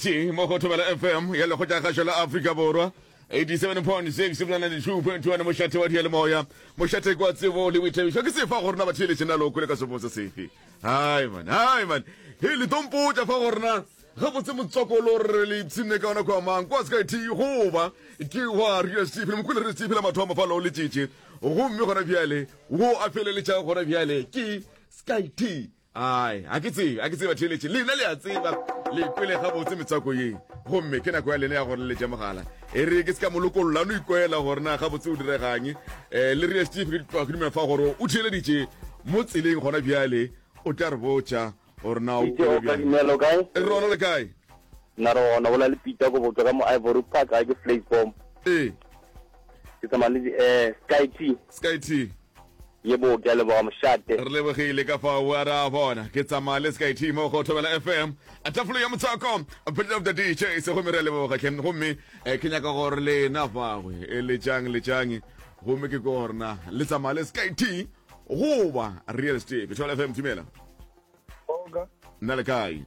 T mo go Thobela FM ya Lekgotšagašo la Afrika Borwa 87.6 bjana le 2.1 mošate wa diyalemoya mošate kwa tsebo le boithabišo ke sefa go rena batheeletše na loko le ka sepotsa sefe hai man hai man he le tompotša fa go rena gabotse motswakolo re le ipshinne ka ona kwa mang kwa sky t goba ke wa radio stephen mokule radio stephen mathomo fa loo letšitše gomme gona bjale wo a feleletša gona bjale ke sky t Ai, ga ke tsebe, ga ke tsebe batheeletši, lena le a tseba, le kwele gabotse metswako ye. Gomme ke nako ya lena ya go leletša mogala. E re ke se ka mo lokolla, a no ikwela gore na gabotse o diregang. Eh, le re, Steve, re tloga ke dumela fa gore o theeleditše mo tseleng gona bjale, o tla re botša gore na o Ije kwele o ka bjang. dumela, o kae? E re, Rona le kae? Nna re gona, bola le Peter go botšwa ka mo Ivory Park, ga ke Fleetboom. Ee. Ke tsamaya le di, eh, Sky Tea. Sky Tea. Yebo, ke a leboga mošate. Re lebogile ka fao a re a bona ke tsamaya le Sky T mo go Thobela FM a tafolo ya motswako Pit of the DJs gomme re a leboga tlhe gomme eh, ke nyaka gore lena fagwe e le tšang le tšang gomme ke ko gorena le tsamaya le Sky T goba Real Steve Thobela FM dumela Oga, nna le kae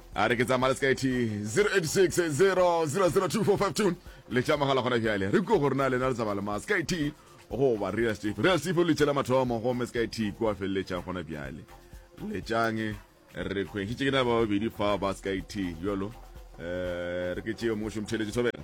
a re ke tsamaya le sky t 0860002452 le tša mogala gona bjale re kwe gore na lena le tsamaya le ma sky t goba real steve real steve o letšela mathomo gomme sky t kua feleletšang gona bjale letšang re kgwešitše ke na ba babedi fa ba sky t jalo um re ke tšeo mošomtheletše thobela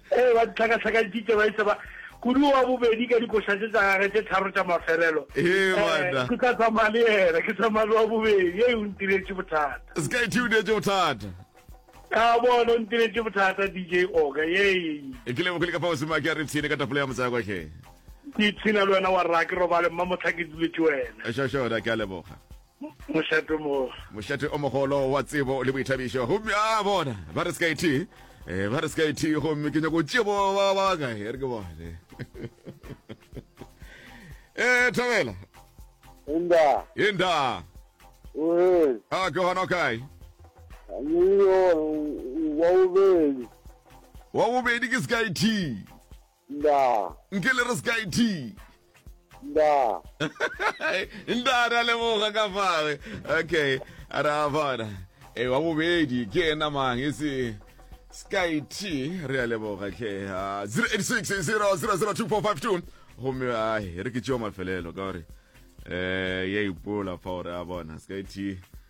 Ee, ba di hlakahlakantšitše ba e tseba kudu wa bobedi ka dikošatše tša gage tše tharo tša mafelelo. Ee, banna. Ke tla tsamaya le yena, ke tsamaya le wa bobedi. Ee, o ntiretše bothata. Sky T o neetše bothata. Ka bona, o ntiretše bothata, DJ Oga. Ee. E ke leboge le ka fa Osimo a ke a re tshine ka tapole ya motsayakwa hle. Ke ipshina le wena wa rra, ke robale mmamotlha ke duletše wena. Šošona, ke a leboga. Mošate mo. Mošate o mogolo wa tsebo le boithabišo. Gomme a bona, ba re sky tea. Eh, ba re sky tea gomme ke nyako tšea bo ba ba ka e re ke bone. Eh, Thabela. Inda. Inda. Uhel. Ah, ke hona kae? Yo wa ubedi. Wa ubedi ke sky tea. Ndaa. Nke le re Sky T. Ndaa. Ndaa, re a leboga ka fale. Okay, ra bona. E wa bobedi ke ena mang e se Sky T re a leboga tlhe. 086 0002452 gomme ai re ke tšeo mafelelo ka gore eh ya ipola fa gore a bona Sky T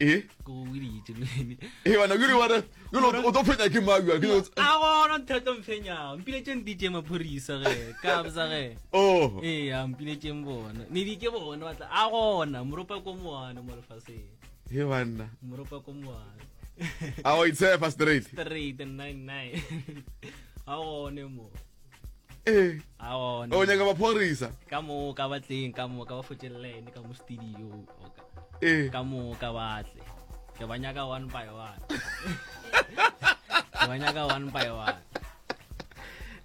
e e wena ke re wena ke lo o tlo phenya ke ma ya ke a gona thata mphenya mpile tše ndi tše maphorisa ge ka bza ge oh e ya mpile tše mbona ne di ke bona batla a gona moropa ko moana mo lefaseng he banna moropa ko moana a o itse fa straight straight 99 a gone mo ee Ao, o nyaka maphorisa ka mo ka batleng ka mo ka ba fotelelene ka mo studio oka ee ka mo ka batle ke ba nyaka one by one ke ba nyaka one by one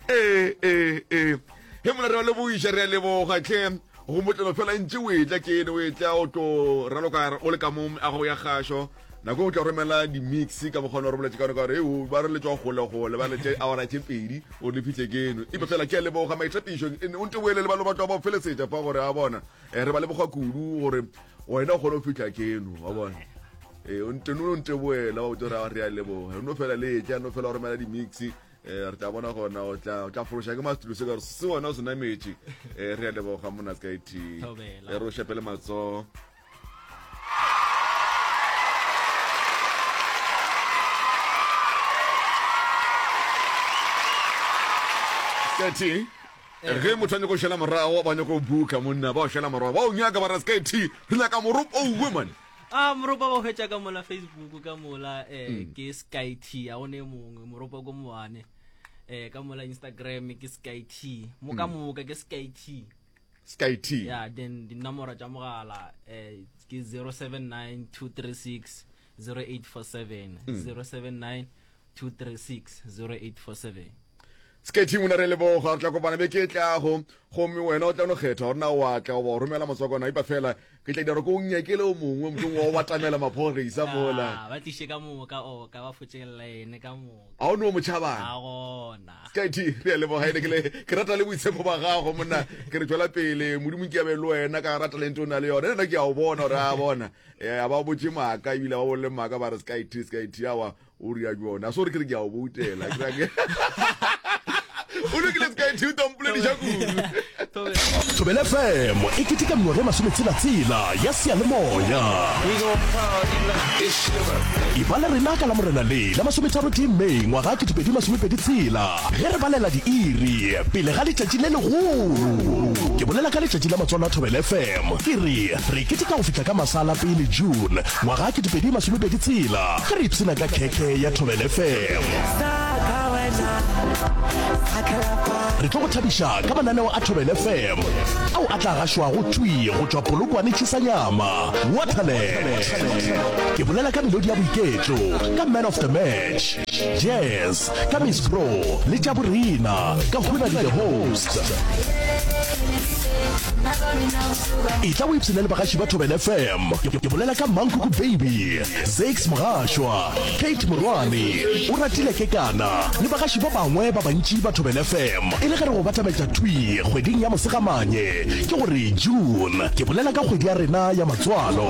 ee ee ee he mona re ba lebogiša re a leboga tlhe Go motlelo fela e ntše o etla ke ene o etla o tlo raloka o le ka mo meago go ya gašo nako o tla romela di-mix ka mokgwa o re boletse ka one ka gore eo ba re letswa golegole ba letse awara tše pedi o le fitlhe keno epe fela ke a leboga maitapišo o nte boele le ba lobatwa ba o felesetša fa gore a bona eh, re ba leboga kudu gore wena o kgone go fitlha keno wa bona ee eh, o nteno o nte boela wa botse gore re a leboga no fela le etla no fela o romela di-mix eh re tla bona gona o tla o tla fološa ke mastulo se ka se wona o se nametše eh re ya leboga mona sky t e re o shepele matso sky t eh, ge motho a nyako šela morago ba nyako buka monna ba o šela morago ba o nyaka ba ra sky t re nyaka moropo o uwe mane a moropa ba hwetša ka mola facebook ka mola um ke sky t a gone mongwe moropa ko moane um ka mola instagram ke sky t mo ka moka ke sky t sky t ya then dinomoro tša mogala um ke 079 236 0847 079 236 0847 Sketty monna re leboga re tla kopana beke e tlago gomme wena o tla no kgetha gore na wa tla goba o romela motswakwana ipa fela ke tla dira ko o nyakele o mongwe motlong wa o batamela maphorisa mola ah, ba tliše ka moka oka ba fotšelela ene ka moka ga o no mo tšhabana a gona Sketty re a leboga ene kele ke rata le boitshepo ba gago monna ke re tšwela pele modimo ke abe le wena ka rata lente o na le yona ena ke a o bona gore a bona eh, a ba botše maaka ebile ba bolle maaka ba re Sketty Sketty awa o ria jone a sore ke re ke a o boutela o lokile se ka e thiuta mpolediša kudu thobele fm e keteka mengwaga e masometshelatsela ya seyalemoya e bala rena ka la morena le la masometharo tee may ngwaga ke tupedi masomepedi tshela ge re balela diiri pele ga letšatši le legolo ke bolela ka letšatši la matswalo a thobele fm ke re re keteka go fihla ka masala pele june Ngwaga ke dipedi masome pedi tshela ge re ipshina ka khekhe ya Thobela FM. Re tlo go thabiša ka mananeo a Thobela FM ao a tla gašwago thwi go tšwa Polokwane Tšhusanyama, Waterland. Ke bolela ka melodi ya boiketlo ka Man of the Match. Jazz ka Miss Bro le tša borena ka hona di the host. E tla o ipsene le bagaši ba Thobela FM. Ke bolela ka Mankuku Baby, Zakes Mogashwa, Kate Morwane, o ratile ke kana le bagaši ba bangwe ba bantši ba Thobela FM. E le ge re go batametša thwi kgweding ya Mosegamanye ke gore June. Ke bolela ka kgwedi ya rena ya matswalo.